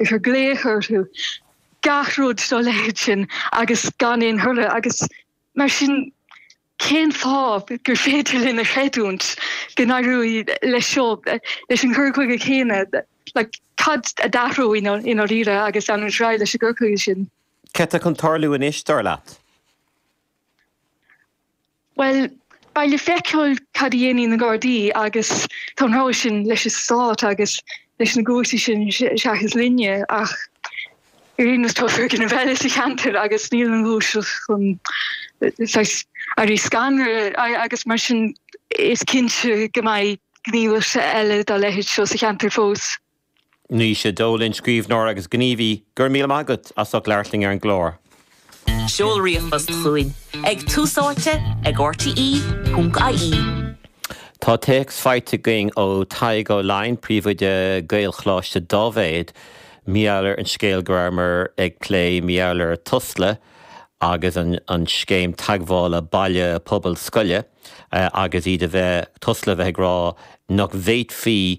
a chur glaoch orthu gach rud dá leithéid sin agus gan aon thoradh agus mar sin cén fáth gur féidir linn a chreidiúint go n-éireoidh leis seo, leis an gcur chuige chéanna? Like cad a d'athraigh i ndáiríre agus an is raidh leis an gcur chuige sin? Céard atá chun tarlú anois dar leat? Bhuel, beidh le feiceáil cad a dhéanfaidh na Gardaí agus tá an rogha sin leis an Stát agus leis na cúirteanna sin seachas linne ach ar aon nós tá foirgneamh eile sa cheantar agus níl an ghluaiseacht chun saghas éirí scanraithe agus mar sin is cinnte go mbeidh gníomhartha eile dá leithéid seo sa cheantar fós. Naoise Dolan, scríbhneoir agus gníomhaí, go raibh míle maith agat as ucht labhairt linn ar an gclár. Tá téacs faighte againn ó Tadhg Ó Laighin, príomhoide Gaelcholáiste Dáibhéid, mar gheall ar an scéal go rabhamar ag plé mar gheall ar Tusla agus an scéim teagmhála baile pobal scoile agus iad a bheith, Tusla a bheith ag rá nach bhféadfaí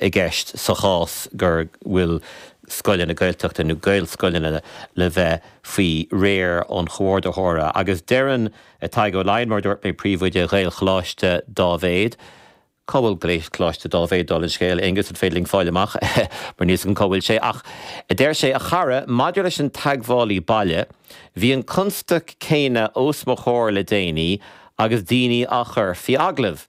i gceist sa chás go bhfuil scoileanna Gaeltachta nó Gaelscoileanna le bheith faoi réir an Chomhordaitheora. Agus deireann Tadhg Ó Laighin, Mar a dúirt mé, Príomhoide Ghaelcholáiste Dáibhéid, Cá bhfuil Gaelcholáiste Dáibhéid? Dála an scéil, Aonghus, an féidir linn fáil amach mar níl a fhios agam cá bhfuil sé? Ach deir sé, a chara, maidir leis an teagmhálaí baile, bhí an constaic céanna os mo chomhair le déanaí agus daoine á gcur faoi agallamh.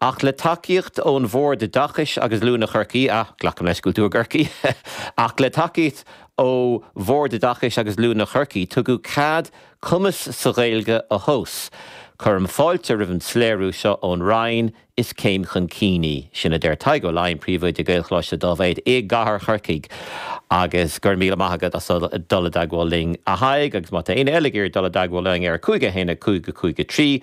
Ach le tacaíocht ó Bhord Oideachais agus Oiliúna Chorcaí, ah, glacaim leis go bhfuil tú i gCorcaigh, ach le tacaíocht ó Bhord Oideachais agus Oiliúna Chorcaí tugadh cead cumas sa Ghaeilge a thomhas. Cuirim fáilte roimh an soiléiriú seo ón Roinn, is céim chun cinn í. Sin a deir Tadhg Ó Laighin, Príomhoide Gaelcholáiste Dáibhéid i gcathair Chorcaí. Agus go raibh míle maith agat as dul i dteagmháil linn, a Thaidhg, agus má tá éinne eile ag iarraidh dul i dteagmháil linn ar 515-53.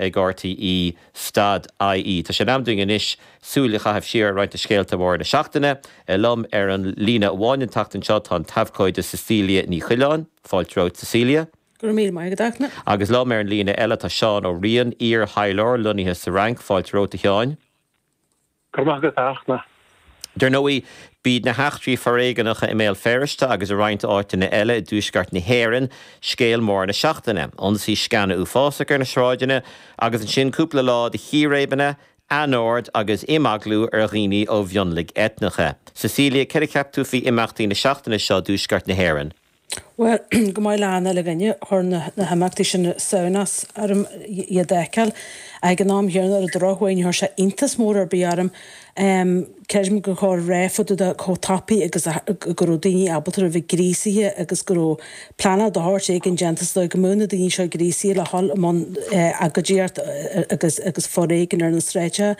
ag rte, stad IE. Tá sé in am dúinn anois súil a chaitheamh siar ar roinnt de scéalta móra na seachtaine. Liom ar an líne amháin an tseachtain seo tá an t-abhcóide Cecilia Ní Choileáin, fáilte romhat Cecilia. Go raibh míle maith agat, Eithne. Agus liom ar an líne eile tá Seán Ó Riain, iar-thaidhleoir lonnaithe sa Fhrainc, fáilte romhat a Sheáin. Go raibh maith agat, a Fhachtna. Dar ndóigh, b'iad na heachtraí foréigneacha i mBéal Feirste agus i roinnt áiteanna eile i dTuaisceart na hÉireann scéal mór na seachtaine, ionsaí scine uafásach ar na sráideanna agus ansin cúpla lá de chíréibeanna, anord agus imeaglú ar dhaoine ó mhionlaigh eitneacha. Cecilia, céard a cheap tú faoi imeachtaí na seachtaine seo i dTuaisceart na hÉireann? Bhuel, go maith, le hAnna, leabhaine, chuir na himeachtaí sin samhnas orm iad a fheiceáil. Ag an am chéanna, ar an drochuaigh, níor chuir sé iontas mór ar bith orm. Creidim go, go raibh, fadúda chomh tapaidh agus go raibh daoine ábalta a bheith gríosaithe agus go raibh pleanáil de shórt éigin déanta sa dóigh go mbeadh na daoine seo gríosaithe le dhul i mbun agóidíocht agus foréigean ar na sráideacha.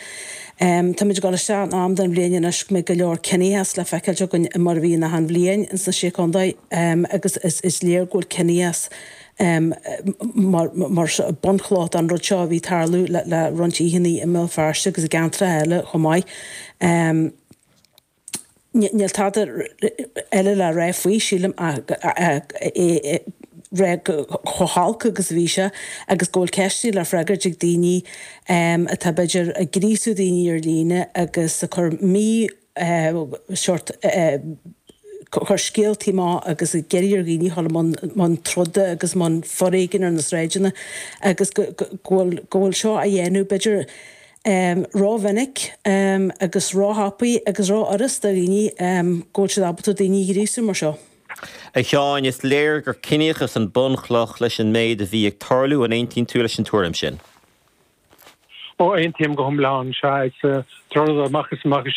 Em, táimid ag dul isteach in am den bhliain anois go mbeidh go leor ciníochas le feiceáilt againn i mar a bhí in achan bhliain ins na Sé Contae, em, agus is, is léir go bhfuil ciníochas, em, mar, mar bunchloch don rud seo a bhí ag tarlú le, le roinnt oícheannaí i mBéal Feirste agus i gceantracha eile chomh maith. Em. Níl tada eile le rá faoi, sílim, ach a rá chomh holc agus a bhí sé agus go bhfuil ceisteanna le freagairt ag daoine atá, b'fhéidir, ag gríosú daoine ar líne agus ag cur mí, sórt, cur scéaltaí amach agus ag iarraidh ar dhaoine dhul i mbun troda agus i mbun foréigin ar na sráideanna agus go bhfuil seo á dhéanamh, b'fhéidir, um, ró-mhinic, um, agus ró-thapaidh agus ró-fhuras do dhaoine, um, go bhfuil siad ábalta daoine a ghríosú mar seo. A Sheáin, is léir gur ciníochas an bun-chloch leis an méid a bhí ag tarlú, an aontaíonn tú leis an tuairim sin? Oh, aontaím go hiomlán, sea, is é atá, rud amach is amach,